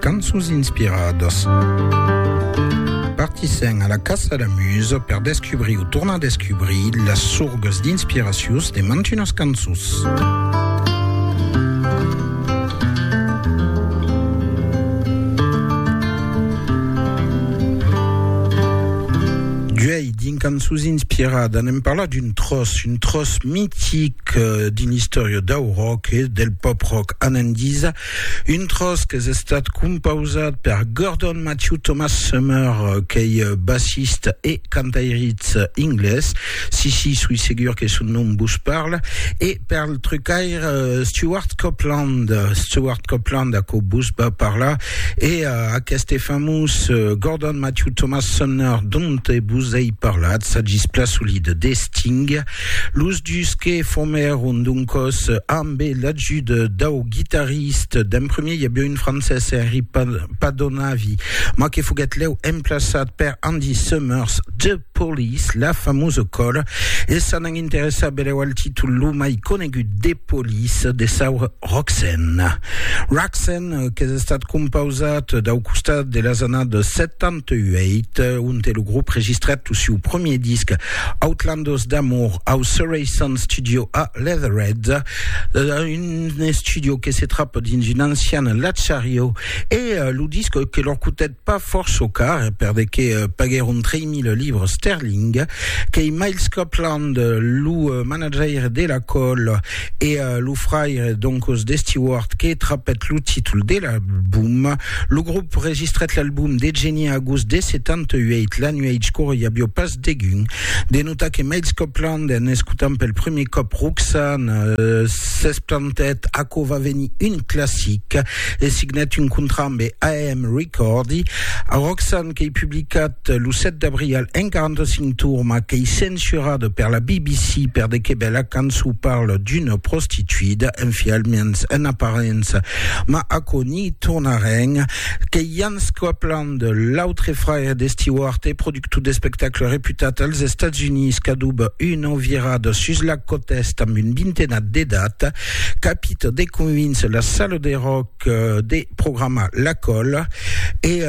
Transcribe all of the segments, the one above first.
Cançons inspiradas. Partissèm a la caça la musa per descubrir o tornar descubrir las sorgas d'inspiracius de mantunas cançons. D'uèi, dins Cançons inspiradas, anem parlar d'un tròç, un tròç mitic, d'une istòria dau rock e del pop-rock. Anandisa Un tròç qu'es estat compausat per Gordon Matthew Thomas Summer, qu'ei bassista e cantairitz inglés, si si, soi segur que son nom vos parla, e per'l trucaire Stewart Copeland, Stewart Copeland, aquò vos va parlar, e aqueste famós Gordon Matthew Thomas Sumner donte vos ei parlat, s'agís plan solide de Sting. Los dus que formèron doncòs Arm Be l'ajuda dau guitarrist d'en premier i aviá un francés, Henri Padonavi, mas que foguèt lèu emplaçat per Andy Summers, The Police, la famosa còra, e s'an an interessar belèu al títol lo mai conegut de Police, de saura Roxanne. Roxanne, qu'es estat compausat dau costat de las annadas 70, 2008, onte lo grop registrèt lo siu premier disc Outlandos d'Amour au Surrey Sound Studio a Leatherhead, un estudio que se trap dins un ancian latxariu, e lo disc que lor cotèt pas fòrça car, per de que paguèron 3.000 livres sterling, qu'ei Miles Copeland, lo manajaire de la còl, E lo fraire Doncos de Stewart que trapèt lo títol de l'album. Lo grop registrèt l'album de Genie a agost de 78, la nuèch qu'aurie avió pas degun. De notar que Miles Copland, en escotant pel prumèr còp Roxanne, s'esplantèt aquò va venir un classic e signèt un contrat ambe AM Recordi. Roxanne qu'ei publicat Cat, lo 7 d'abrial, en 45 tourma qu'ei censurada per la BBC per de que bèla cançon parla d'una prostituida, enfialmens en aparença, ma aquò n'i tornarem, qu'ei Jan Scopeland, l'autre fraire de Stewart e productor d'espectacle reputat als Estats Units qu'adoba una virada sus la còta Èst amb un vintenat d'edat, capita de convíncer la sala de rock, de programar la còla e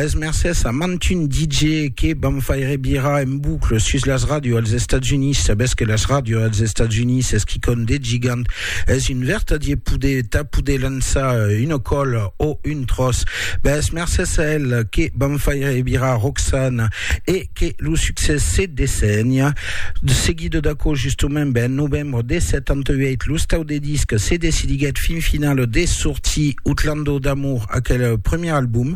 es mercés a mantun DJ que vam faire virar en boucle sus las ràdios als Estats Units sabètz que las ràdios als Estats Units es quicòm de gigant es un vertadier poder tà poder lançar una còla o un tròç ben es mercés a el que vam faire virar Roxana e que lo succès se dessenha de seguida d'aquò justement ben novembre de 78 lo stau de disc se decidiguèt fin final de sortir Outlando d'amour aquel premier album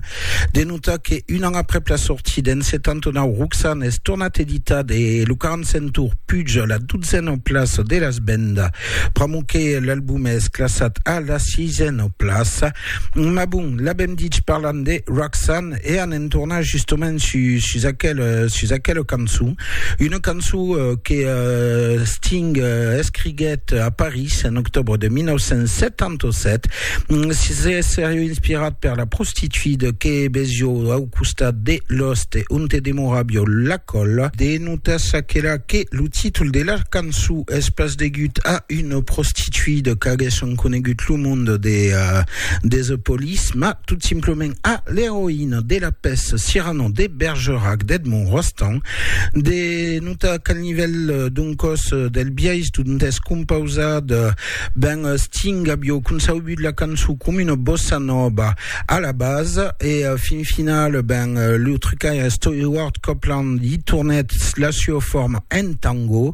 de notar que un an aprèp la sortida en 79 Roxanne es tornat editat e lo 45 tour puja la dotzena plaça de las vendas pr'amor que l'album es classat a la sisena plaça Ma bon, l'avèm dich parlant de Roxanne e anem tornar justament sus, sus, aquel, sus aquela cançon. Una cançon euh, que euh, Sting euh, escriguèt a París en octobre de 1977. Mm, se serieu inspirat per la prostituida que vesió au costat de l'oste on te demorabio la colla. De notas aquela que lo títol de la cançon Es pas degut a una prostituida qu'aguèsson conegut lo monde de Desepolis, mas tot simplement a l'eroïna de la pèça Cyrano de Bergerac d'Edmond Rostand. De notar qu'al nivèl d'un còs del biais dont es compausat, ben Sting avió concebut la cançon com una bossa nòva a la basa e fin final, ben lo trucaire Stewart Copeland i tornèt la sua forma en tango.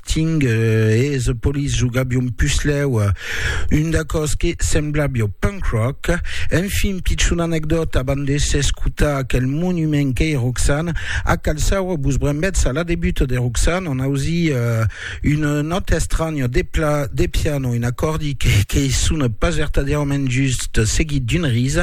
Ting es polis jogabion puslèu un d'acòs que semblabio punk rock. Enfin, pichona anecdòta abans de s'escotar aquel monument qu'ei Roxanne, a Calçaua vos brembètz a la debut de Roxanne, on ausi una nòta estranya de pla de piano, un acòrdi qu'ei sona pas vertadièrament just, seguit d'un ris.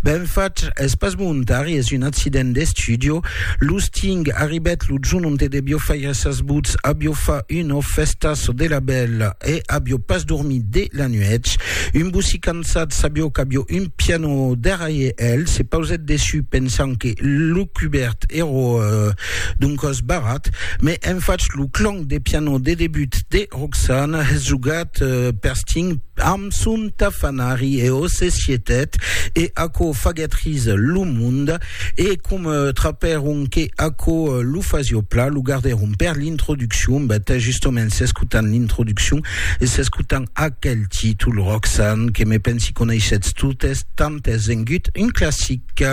Ben fach, es pas volontari, es un accident d'estudio. Los Ting arribèt lo jorn onte debio faire Gràcias votz avió fa una fèsta çò de la bèl e avió pas dormit de la nuèch. Un bocí cansat sabió qu'avió un piano darraire el, se pausèt dessus pensant que lo cubèrt èro d'un còs barrat, me en fach lo clang de piano de debut de Roxane jogat per Sting amb son tafanari e o se sietèt e aquò faguèt ris lo monde. E com trapèron que aquò lo fasio pla, lo gardèron per l'introduccion, bèt, justoments s'escotant l'introduccion e s'escotant aquel títol, Roxane, que me pensi coneishetz totes, tant es vengut un classic.